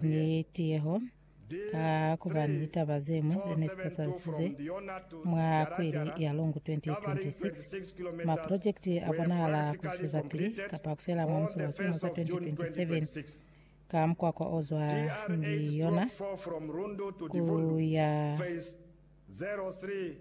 Ni tiyeho, ka kubani litaba zemwi zene zitatalisizwe mwa kweli ya longo 2026, maprojekiti abonahala kuzwezapili kapa kufela mwa musi wa silimo sa 2027 ka mukwakwa ozwa Ndiyona kuya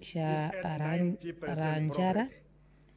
Shaaranjara.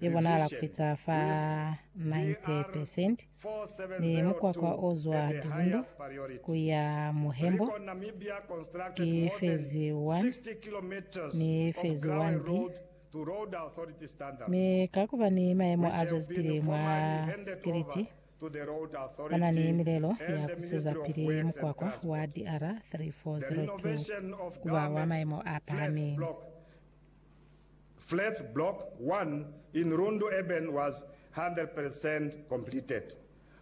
ye bonahala ku fita fa 90 percent, ni mukwakwa o zwa Dibundo ku ya Muhembo ki Phase 1 ni Phase 1B, mi ka ku ba ni mayemo a zwezipili mwa sikiliti, bana ni milelo ya ku sweza pili mukwakwa wa DR 3402 ku ba wa mayemo a pahameng. Flats Block 1 in Rundu Urban was 100 percent completed,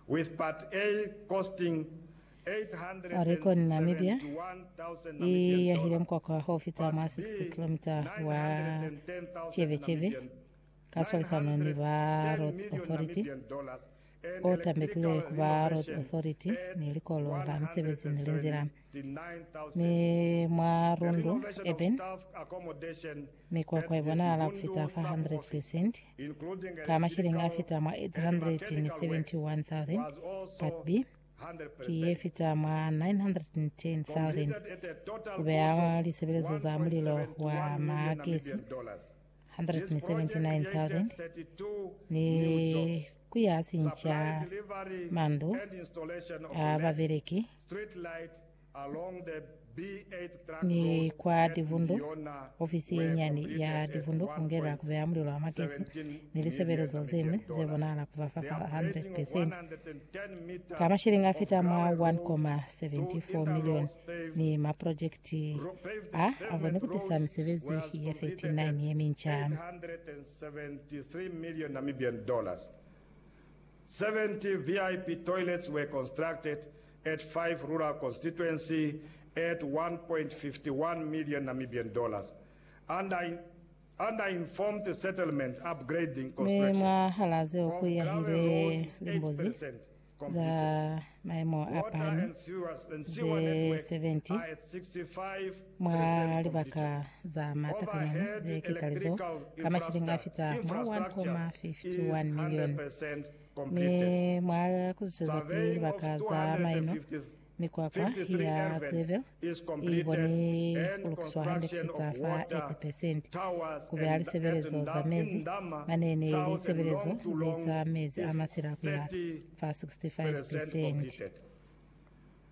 with Part A costing Haricon-Namibia i yahile £871,000 mukwakwa wa ufita mwa 60 kilomita wa cebecebe ka swalisano ni ba Road Authority, o tambekilwe ku ba Road Authority ni Likolo la Misebezi ni Linzila. Mi mwa Rundu Urban, mikwakwa ibonahala fita fa 100% ka mashilingi afita mwa 871,000, Part B, ki yefita mwa 910,000, kubeha lisebelezo za mulilo wa magesi 179,000 ni ku ya sinca mandu a babeleki ni kwa divundu, ofisi ye nyani ya divundu ku ngela ku beya mulilo wa magesi ni lisebelezo ze ñwi ze bonahala ku ba fa 100%. Ka mashilingi a fita mwa 1.74 milioni ni maprojekiti a a koni ku tisa misebezi ye 39 ye minca. 70 VIP toilets were constructed at five rural constituency at 1.51 million Namibian dollars under Mi mwahalaa zeo ku yahile limbuzi za maimo a pahami ze 70 mwa libaka za matakanyana ze kitalizo ka mashilingi a fita mwa 1.51 milioni. Mi mwa kuzuseza ki libaka za maino Mikwakwa ya Greville i koni ku lukiswa hande ku fita fa 80%. Ku beha lisebelezo za mezi mane ni lisebelezo ze isa mezi a masila ku ya fa 65%.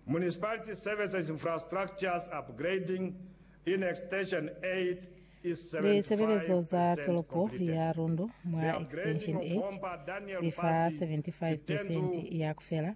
Municipality Services Infrastructures Upgrading in Extension 8 is 75% complete. Lisebelezo za tolopo ya Rundu mwa Extension 8 li fa 75% ya ku fela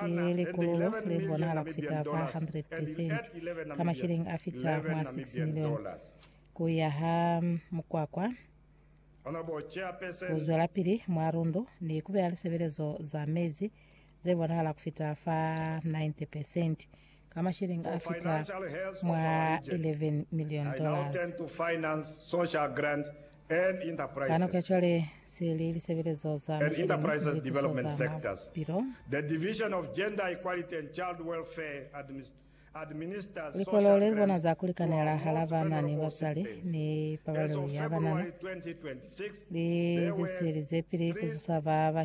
Ki likululo le li bonahala ku fita fa 100 percent, ka mashilingi a fita mwa 6 milioni, ku yaha mukwakwa, ku zwelapili mwa lundu, ni ku beya lisebelezo za mezi ze bonahala ku fita fa 90 percent ka masheleñi a fita mwa 11 million dollars. Ka nako ya cwale, se li lisebelezo za masheleñi ni lituso za mapilo. Likolo le li bona za ku likanela hala bana ni basali ni pabalelo ya banana li zwiselize pili ku zusa ba ba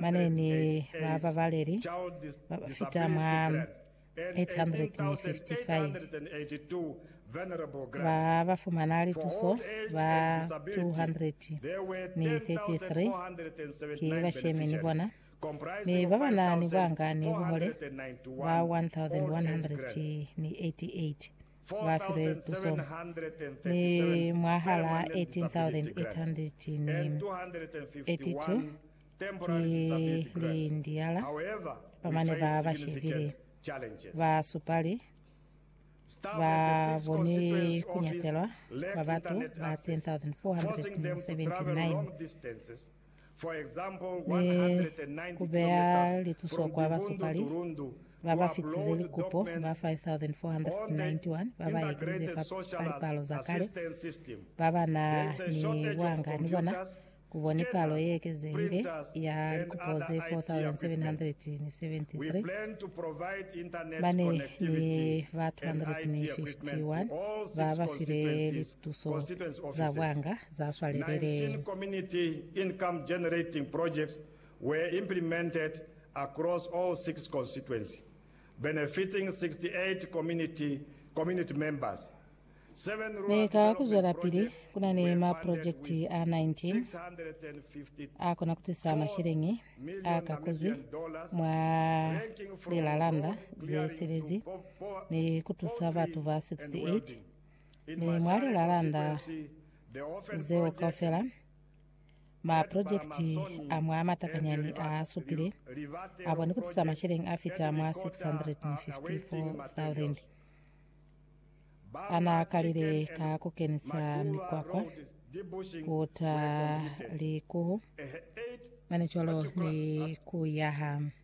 Mane ni bababaleli ba ba fita mwa 855 ba ba fumana lituso, ba 233 ki bashemi ni bona, mi ba ba na ni bwanga ni buhole ba 1,188. ba file tuso, mi mwahal'a 1882 ki liindiala ba mane ba ba shebile, ba supali ba boni ku nyatelwa kwa batu ba 10,479. ni ku beya lituso kwa basupali ba ba fitize likupo ba 5,491 ba ba ekelize fa lipalo za kale ba ba na ni buanga ni bona, ku bo ni palo ye ekezehile ya likupo ze 4,773 ba ne ni ba 251 ba ba file lituso za buanga. za swalelele. 19 community income generating projects were implemented across all six constituency, benefiting 68 community community members. Seven Mi rural ka development kuzwelapili, projects kuna ni were funded maprojekiti with a 19 650 akona kutisa masheleñi a million ka kuzwi Namibian dollars, mwa ranking from lilalanda road ze clearing to silezi po- po- ni kutusa poultry batu ba and 68 Ne mwa li lalanda zeo kaufela, maprojekiti a mwa matakanyani a supile a koni ku tisa macheleni a fita mwa 654,000. A n'a kalile ka ku kenisa mikwakwa, ku ta likuhu, mane cwalo ni ku yaha.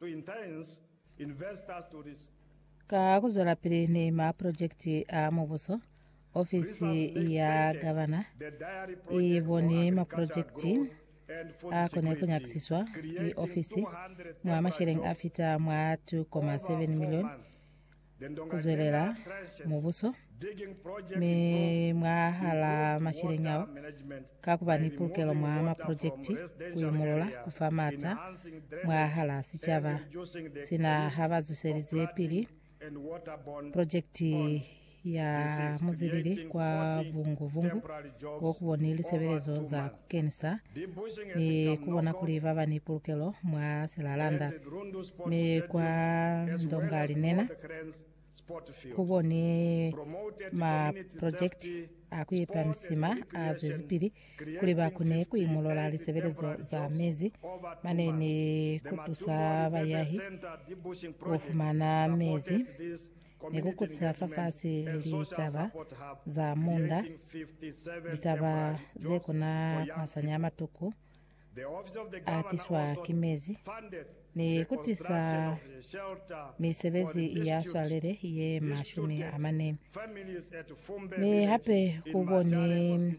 To entice investors to this. Ka ku zwelapili ni mapulojekiti a mubuso, ofisi ya gavana i boni mapulojekiti a kone ku nyakisiswa ki ofisi mwa masheleng a fita mwa 2.7 milioni ku zwelela mubuso, mi mwahalaa masheleñi ao, ka kuba ni pulukelo mwa maprojekiti, ku imulula, ku fa maata mwahalaa sicaba, sina ha ba zwiselize pili projekiti ya muzilili kwa Vungu-Vungu, ko ku bo ni lisebelezo za ku keñisa ni ku bona kuli ba ba ni pulukelo mwa silalanda. Mi kwa ndonga linena, ku bo ni maprojekiti a ku ipa misima a zwezipili kuli ba kone ku imolola lisebelezo za mezi mane ni ku tusa bayahi ku fumana mezi ni ku kutisa fafasi litaba za munda, litaba ze kuna masanya a matuku a tiswa ki mezi, ni ku tisa misebezi ya swalele ye mashumi a mane, mi hape ku bo ni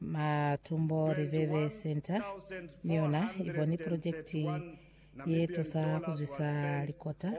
Matumbo Library Centre ni yona i boni purojekiti ye tusa ku zwisa likota